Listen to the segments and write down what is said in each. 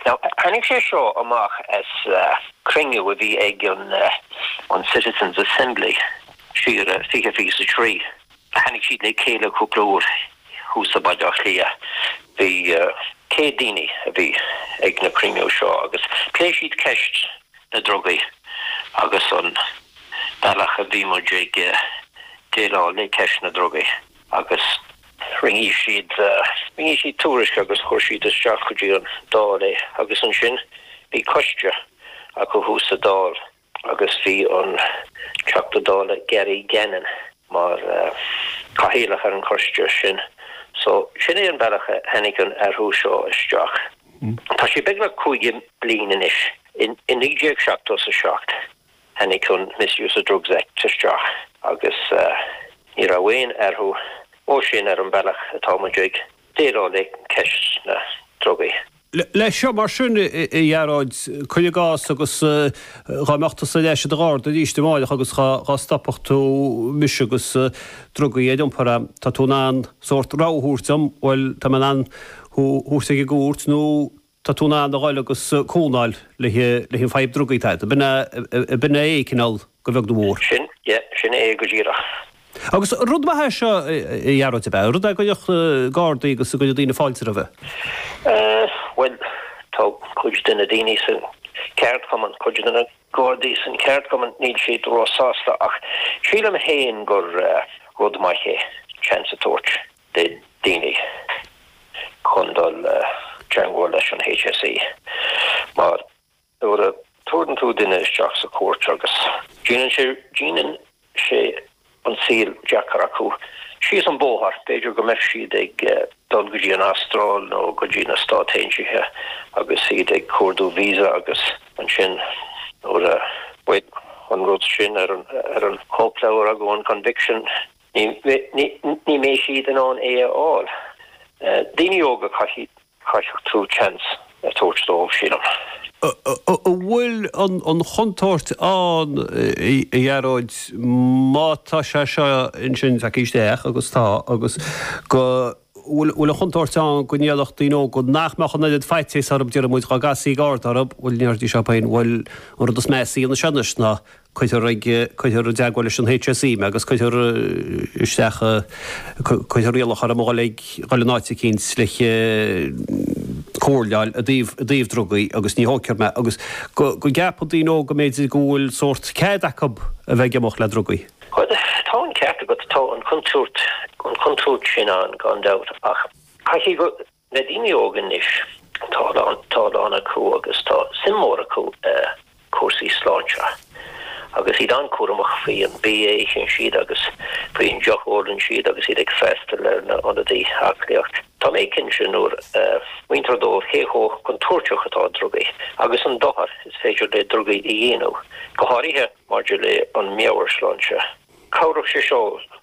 Tháinig sé seo amach as cruinniú a bhí ag an Citizens' Assembly siar i 2023. Tháinig siad le chéile cúpla uair thuas i mBaile Átha Cliath. Bhí 100 daoine a bhí ag na cruinniú seo agus pléigh siad ceist na ndrugaí agus an bealach a bhí muid ag déileáil le ceist na ndrugaí. agus rinne siad, rinne siad tuairisc agus chuir siad isteach go dtí an Dáil é agus ansin bhí coiste acu thuas sa Dáil agus bhí an Teachta Dála Gary Gannon mar Cathaoirleach ar an choiste sin so sin é an bealach a tháinig an athrú seo isteach. Tá sé beagnach caoga bliain anois, i 1977. Tháinig an Misuse of Drugs Act isteach agus ní raibh aon athrú ó sin ar an bealach atá muid ag déileáil le ceist na ndrugaí. Leis seo mar sin, a Ghearóid, cuir i gcás, agus dhá mbeadh tusa ar ais i do Gharda arís amárach agus dhá stopfadh tú mise agus drugaí ar iompar agam, tá tú in ann sórt rabhadh a thabhairt dom, bhuel, tá mé in ann thú thabhairt ag an gcúirt nó. Tá tú in ann a dhul agus cúnamh a fháil leis an bhfadhb drugaí atá agat. B'in é é, cineál, a bheag nó a mhór. Sin, yeah, sin é go díreach. Agus rud maith é seo, a Ghearóid, ab ea? Rud a gcuirfeadh na gardaí agus a gcuirfeadh daoine fáilte roimhe? Bhuel, tá cuid de na daoine sa cheardchumann, cuid de na gardaí sa cheardchumann, níl siad ró-sásta ach sílim féin gur rud maith é seans a thabhairt. do dhaoine chun dul i dteangmháil leis an HSE. Mar nuair a tabharfaidh tú duine isteach sa chúirt agus. Déanann sé, déanann sé an saol deacair acu síos an bóthar, b'fhéidir go mbeadh siad ag dul go dtí an Astráil nó go dtí na Stát Aontaithe agus iad ag cuardú víosa agus ansin nuair a bheadh an rud sin ar an chóipleabhar acu, an conviction, Ní mbeidh siad in ann é a fháil. Daoine óga caithfeadh tú seans a tabhairt dóibh, sílim. An bhfuil an chontúirt ann, a Ghearóid, má tá sé seo ansin, tagtha isteach agus tá, agus go, an bhfuil an chontúirt ann go ndéarfadh daoine óga nach mbeadh an oiread faitíos orthu, deirimid, dhá gcasfaí Garda orthu, go ndéarfaidís leo féin. Bhuel, an rud is measa a dhéanfas sé anois ná cuirfear ag cuirfear i dteagmháil leis an HSE mé agus cuirfear isteach cuirfear iallach orm a dhul ag dhul in áit eicínt le haghaidh comhairle a fháil i dtaobh i dtaobh drugaí agus ní thógfar mé agus go go gceapann daoine óga go mb'fhéidir go bhfuil sórt cead acu a bheith ag imeacht le drugaí. Bhuel, tá an ceart agat, tá an chontúirt an chontúirt sin ann gan dabht ach caithfidh go Na daoine óga anois, tá a lán acu agus tá suim mhór acu i cúrsaí sláinte agus iad an-cúramach faoi an bia a itheann siad agus faoin deoch a ólann siad agus iad ag freastal ar na hionadaí aclaíochta. Tá mé cinnte nuair a mhúintear dóibh cé chomh contúirteach atá drugaí agus an dochar is féidir le drugaí a dhéanamh, go háirithe maidir le an meabhairshláinte, cabhródh sé seo leo.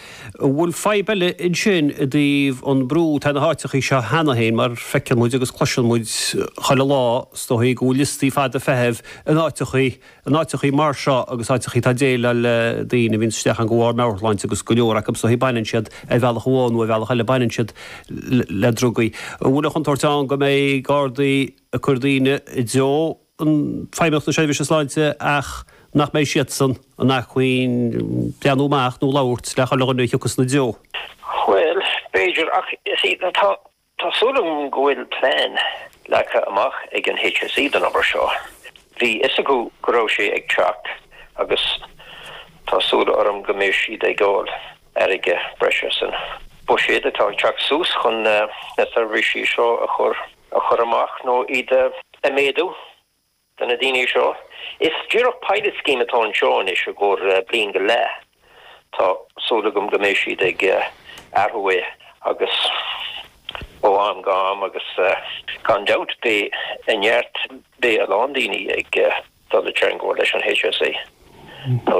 An bhfuil fadhb eile ansin i dtaobh an brú? Tá na háiteachaí seo cheana féin, mar feiceann muid agus cloiseann muid chuile lá, is dóichí go bhfuil liostaí fada feithimh in áiteachaí, in áiteachaí mar seo agus áiteachaí atá ag déileáil le daoine a bhíonn isteach ann de bharr meabhairshláinte agus go leor acu, is dóichí, baineann siad, ar bhealach amháin nó ar bhealach eile, baineann siad le drugaí. An bhfuil an chontúirt ann go mbeidh Gardaí ag cur daoine i dtreo? an Feidhmeannacht na Seirbhíse Sláinte ach nach mbeidh siadsan in acmhainn breathnú amach nó labhairt le chuile dhuine a thiocfas ina dtreo. Bhuel, b'fhéidir, ach, tá, tá súil agam go bhfuil plean leagtha amach ag an HSE don obair seo. Bhí a fhios acu go raibh sé ag teacht agus tá súil orm go mbeidh siad ag fháil airgead breise san buiséad atá ag teacht suas chun na seirbhísí seo a chur a chur amach nó iad a mhéadú do na daoine seo. Is díreach pilot scheme atá anseo anois i gcomhair bliain go leath. Tá súil agam go mbeidh siad ag athrú é agus ó am go ham agus gan dabht beidh neart, beidh a lán daoine ag dul i dteangmháil leis an HSE nuair